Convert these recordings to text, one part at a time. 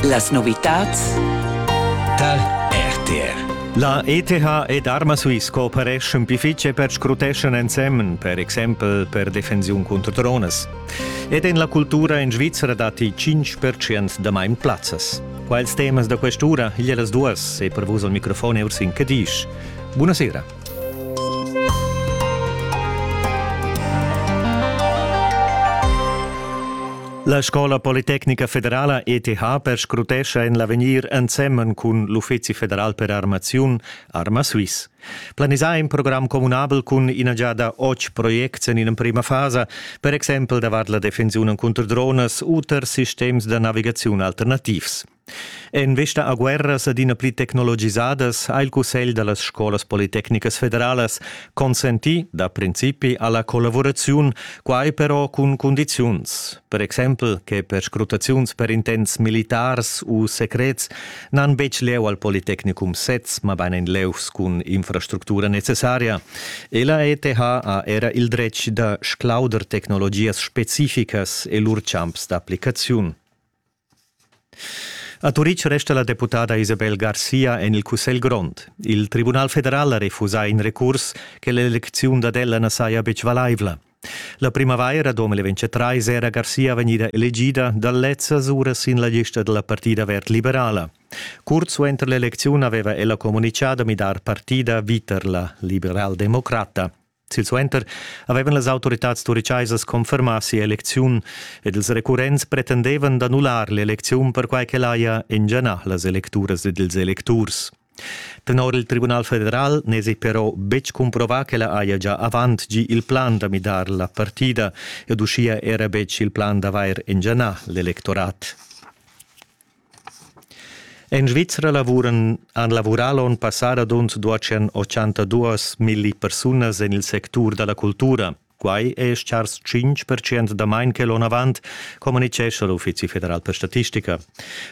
Las novitads tar RTR. La ETH ed Arma Swiss coopereschan pli fitg e per scruteschan ensemen, per exempel per defensiun cunter dronas. Ed en la cultura en Svizzera datti 5% damain plazzas. Quels temas da quest'ura, igl las duas e per vus al microfon er sin Cadisch. Buonasera. La Scola politecnica federala ETH perscrutescha en l'avegnir ensemen cun l'Uffizi federal per armaziun Arma Swiss. Planisà in program communabel cun ina giada otg projects en l'emprima fasa, per exempel davart la defensiun cunter dronas u tar sistems da navigaziun alternativs. En vesta a guerras adina pli tecnologisadas ha il Cussegl da las scolas politecnicas federalas consentì da principi alla collavuraziun, quai però cun cundiziuns, per exempel che perscrutaziuns per intents militars u secrets n'han betg lieu al Politecnicum sez, mabain en levs cun infrastructura necessaria. E la ETH ha era il dretg da sclauder tecnologias specificas e lur champs d'applicaziun. A Turitg resta la deputada Isabel Garcia en il Cussegl grond. Il Tribunal federal ha refusà in recurs che l'elecziun dad ella na saja betg valaivla. La primavaira 2023 era Garcia vegnida elegida dal lezzas ura sin la lista da la partida verd liberala. Curt suenter l'elecziun aveva ella communitgà da midar partida viter la liberaldemocrata. Silsuenter avevan las autoritads turichaisas confermà sia elecziun ed ils recurrents pretendevan d'annullar l'elecziun perquai ch'el haja engianà las electuras ed ils electurs. Tenor il Tribunal federal n'èsi però betg cumprovà ch'ella haja già avant gì il plan da midar la partida ed uschia era betg il plan d'avair engianà l'electorat. En Svizra lavuran han lavurà l'onn passà radund duaschen ochantadus milli persunas en il sectur da la cultura. Quai è stars 5 percent damain che l'onn avant, communitgescha l'Uffizi federal per statistica.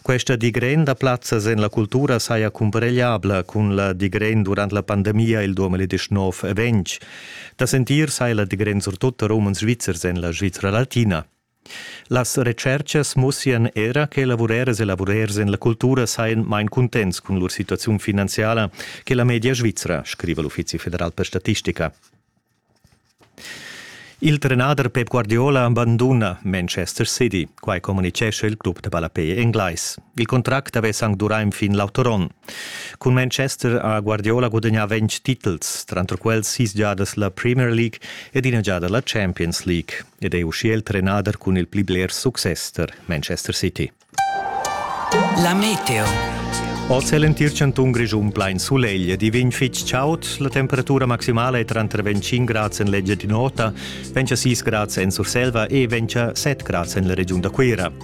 Questa digren da plazzas en la cultura saja cumparegliabla cun la digren durant la pandemia il 2019 e 20. Da sentir sai la digren surtut da romans svizzers en la Svizra latina. Las retscherchas mussian era che lavurers e lavurers en la cultura sajan main cuntents cun lur situaziun finanziala che la media svizra, scriva l'Uffizi federal per statistica. Il trenader Pep Guardiola banduna Manchester City, quai communitgescha il club da ballapei englais. Il contract avess anc durà enfin l'auter onn. Cun Manchester ha Guardiola gudagnà ventg titels, tranter quels sis giadas la Premier League ed ina giada la Champions League. ed è uschia il trenader cun il pli bler success tar Manchester City. La meteo. Oz è l'entir chantun Grischun plain sulegl ed i vegn fitg chaud. La temperatura maximala è tranter 25 grads en l'eglia di nota, 26 grads en Surselva e 27 grads en la regiun da Cuira.